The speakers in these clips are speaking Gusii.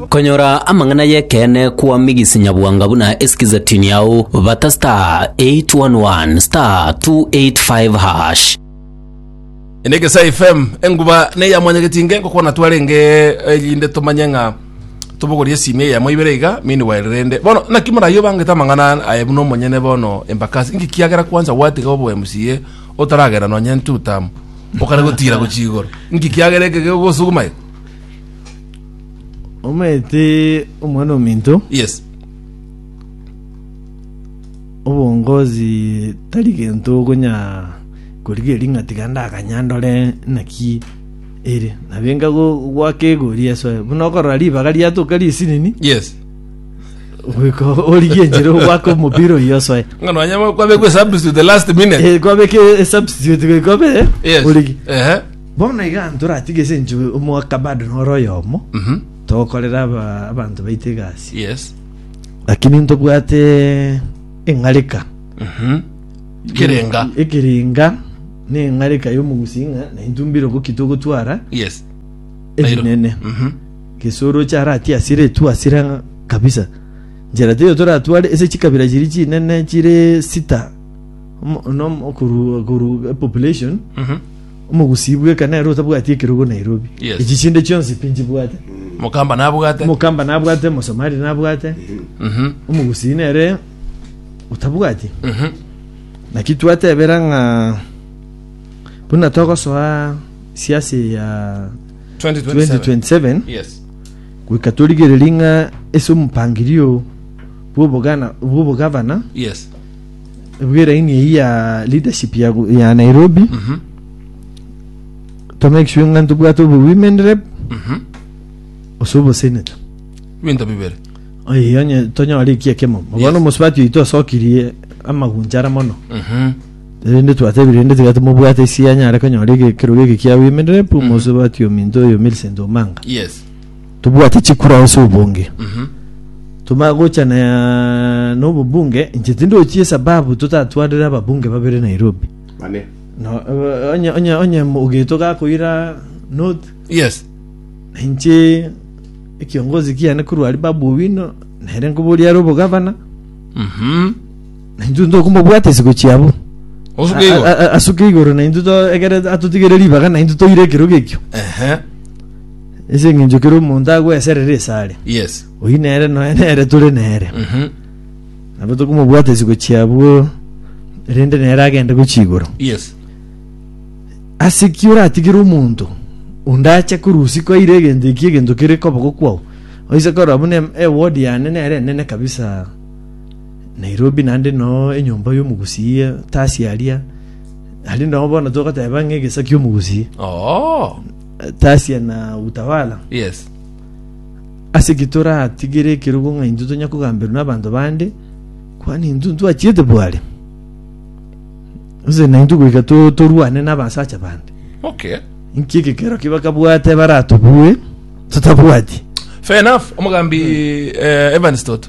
Konyora amang'ana y'ekeene kwa Migisi Nyabwanga buna esikize tini yao bata star 811 star 285 hash. enegesa fm enguba neya mwanyageti nge ngokwana twarenge eh, rinde tumanye ng'a tubogorie esimi eye yamo ibere iga meanwhile rende bono naki morayi obangete amang'ana aye buna omonyene bono embakasi inki kiagera kwanza gwatiga obo mca otaragera nonye ntutam Mokare gotiira gochia igoro. Nki kiagera eke gegosuguma eke? Omanyete omwana ominto Yes. obongozi tari gento okonya korigeria ring'a tiga ndakanya ndore naki ere nabenga go- gwaka egori esoe buna okorora ribaga riatoka risinini Yes. Goika origie enchera ogwake omopira oyio osoe. Ng'a nonya kwabekwe substitute the last minute. Eh, kwabeke eh, substitute goika obe eh, Yes. origi. Ehe. Bono iga ntoratige ase enche omwaka bado noro oyomo Mhm. tokorera aba- abanto baite egasi Yes. lakini ntobwate eng'areka Mhm. Kirenga. ekerenga na eng'areka y'omogusi ng'a naintumbire ogoki togotwara Yes. ebinene Mhm. Gese oroche aratie asire tu asire ng'a kabisa. Nchera teiyo toratware ase chikabira chiria chinene chire sita omo no okoru okoru population Mhm. omogusii bweka nere otabwati ekerogo Nairobi. Yes. Echi chinde chionsi pi nchibwate. mokamba nabwate Omokamba nabwate, Omosomali nabwate, Mhm. omogusii nere otabwati. Mhm. Naki twatebera ng'a buna togosoa siasi ya 2027 2027 yes goika torigererie ng'a ase omopangirio bw'obogana- bw'obogavana yes bw'eraini eyio ya leadership ya go- ya nairobi Mhm. to make sure ng'a ntobwate obo women rep Mhm. ase obosenator binto bibere Oye, onye tonyore ekiekemo Yes. bono omosubati oito osokirie amagunchara mono Mhm. Erinde twatebi rende tiga timobwate isi anyare konyora ege- ekerogo eke kiabo emerere, pu omosio batio ominto oyo Millicent Omanga. Yes. Tobwate chikura ase obonge. Mhm. Tomanye gocha na nobobunge, inche tindochie esababu totatwarire ababunge babere Nairobi. Bane. No, eh, onye, onye, onye mogeto gakoira not, Yes. na inche ekiongozi kiane korwa ari babu owino, nere nkoboria are obogabana, Mhm. Na intwe tokomobwata isiko chiabo. Osuke A- igoro. a- a- Asuke igoro na intwe to- ekere atotigere ribaga na intwe toire ekerogo ekio. Ehe. Ase eng'encho kere omonto agweserere esare. Yes. Oyi nere noe nere tore nere. Mhm. Nabo tokomobwata isiko chiabo rende nere agende gochia igoro. Yes. ase ki oratigire omonto onde ache korusi kwaire egento eki egento kere koboko kwao oise korwa buna ewodi yane nere enene kabisa Nairobi naende noo enyomba y'omogusii etasi aria, naende noo bono togoteba ng'a egesa ki'omogusii Oh, etasi na utawala. yes. Ase ki toratigere ekerogo ng'a intwe tonya kogamberwa n'abanto bande? Kwani intwe ntwachiete bware? Gose naintwe goika to- torwane n'abasacha bande? Okay. Inki egekero ki bakabwate baratobue totabwati? Fair enough, omogambi eh, Evans Toto.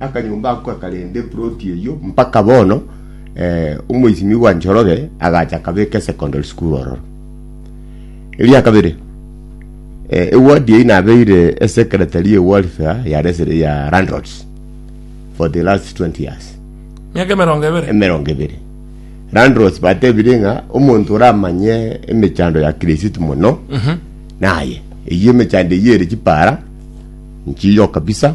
Akanyomba ako gakarenta eploti eyio mpaka bono. Eh, omoisimigwa Njoroge agacha akabeka esecondary school ororo. Eria kabere, eh, eward eyio nabeire esecretary ye welfare ya, resi- ya landlords for the last 20 years Miaka emerongo ebere. emerongo ebere landros batebire ng'a omonto oramanye emechando ya kirisitu mono naye eyio emechando eyio ere chipara nchiyo kabisa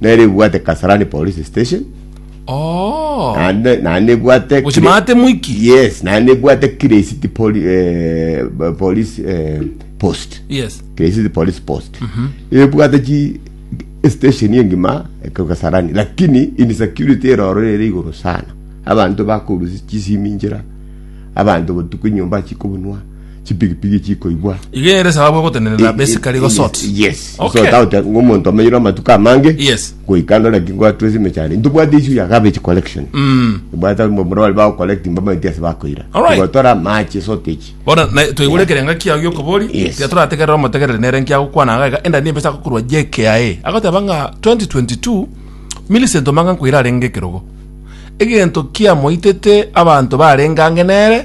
nere ebwate kasarani police station Oh. naende naende ebwate Gochi Kire- maate mwiki. yes naende ebwate kiresiti poli, eh, b- police eh, post Yes. kiresiti police post ebwate chi station engima kasarani lakini insecurity eroro ere igoro sana abanto bakorusi chisimi njira abanto botuku nyomba chikobunwa chipigipigi chikoigwa iga ere esababu egotenenera basically gosort yes Okay. gosota ote ng'omonto omenyire amatuko amange Yes. goika ndore ki ngwatwese emechando ntobwate issue ya garbage collection Mm. bwata mbomura bari bagocollect mbamaiti ase bakoira Alright. gotora amache sotechi bona na twaigure ekerenga kiao giokobori Yes. tiga torategerera omotegerere nere nkiagokwana iga iga enda niyo mpesa agokorwa jka agoteba ng'a 2022 Millicent omanga nkoira arenge ekerogo egento kiamoitete abanto barenge ange nere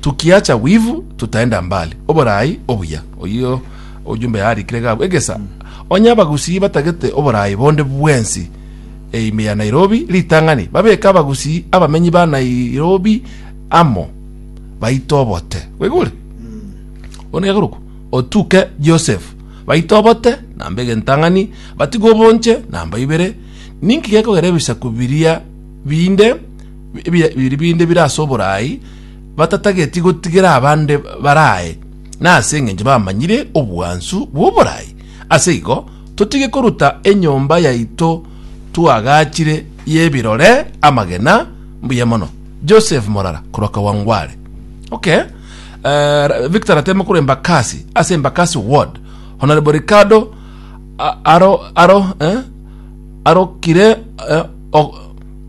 Tukiacha wivu tutaenda mbali oboraai obuya. Oyio ojumbe yaarikire gabu egesa onye abagusii batagete oboraai bonde bwensi e ime ya Nairobi ritang'ani babeke abagusii abamenyi ba Nairobi amo baite obote. Bwegure? One geguruku otuke Joseph baite obote namba egentang'ani batigwe obonche namba ibere. Ninki gekogera ebisaku biria binde biri binde bire ase oboraai, batatageti gotigera abande baraae, na ase engencho bamanyire obwansu bw'oboraai. Ase igo, totige koruta enyomba yaito twagachire y'ebirore amagena. Mbuya mono. Joseph Morara korwa Kawangware. Okay. Eh, Ra- Victor Ratemo korwa Embakasi, ase Embakasi Ward. Honorable Ricardo a- aro aro eh, arokire eh, o-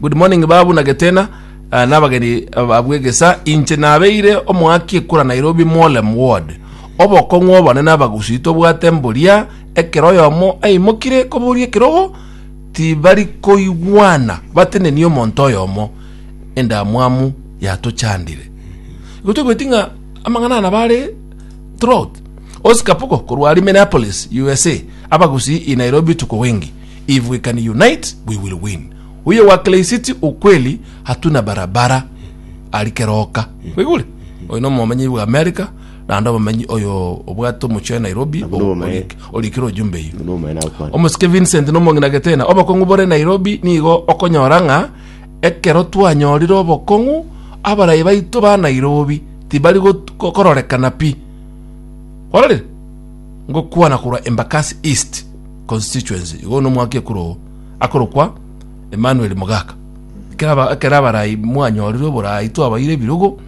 Good morning babu na getena uh, nabageni abwegesa inche nabeire omoaki ekura Nairobi Mwolem ward obokong'u obone nabagusi tobwate mboria ekero oyomo aimokire koboria ekerogo tibari koigwana bateneni omonto oyomo endamwamu yatochandire igo togweti ng'a amang'ana ana bare throughout Oscar Pugo korwa Minneapolis USA abagusi i Nairobi tuko wengi if we can unite we will win uye wa kleisiti ukweli hatuna barabara ari keroka wigure oyo no momenyi wa america nando omomenyi oyo obwate omochio wa nairobi Nabwo nobomenyi. orikire ojumbe iyo Buna omwene akwanga. omosike vincent nomong'ina getena obokong'u bore nairobi nigo okonyora ng'a ekero twanyorire obokong'u abarai baito ba nairobi tibari got- ko- kororekana pi kwarorire ngokwana korwa embakasi east constituency, igo nomwaka ekuro akorokwa Emmanuel Mogaka. Ekero ekero abarai mwanyorire oborai twabaire ebirogo,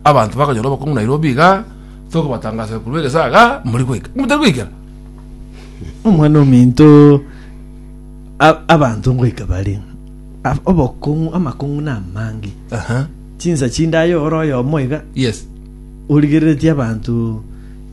abanto bakonyora obokong'u Nairobi iga, tokobatangasera korwa egesaga, mori goika. Motari goikera? omwana ominto abanto ngoika bare obokong'u amakong'u na amange chinsa chindaye oro oyomo iga Yes. origereretie abanto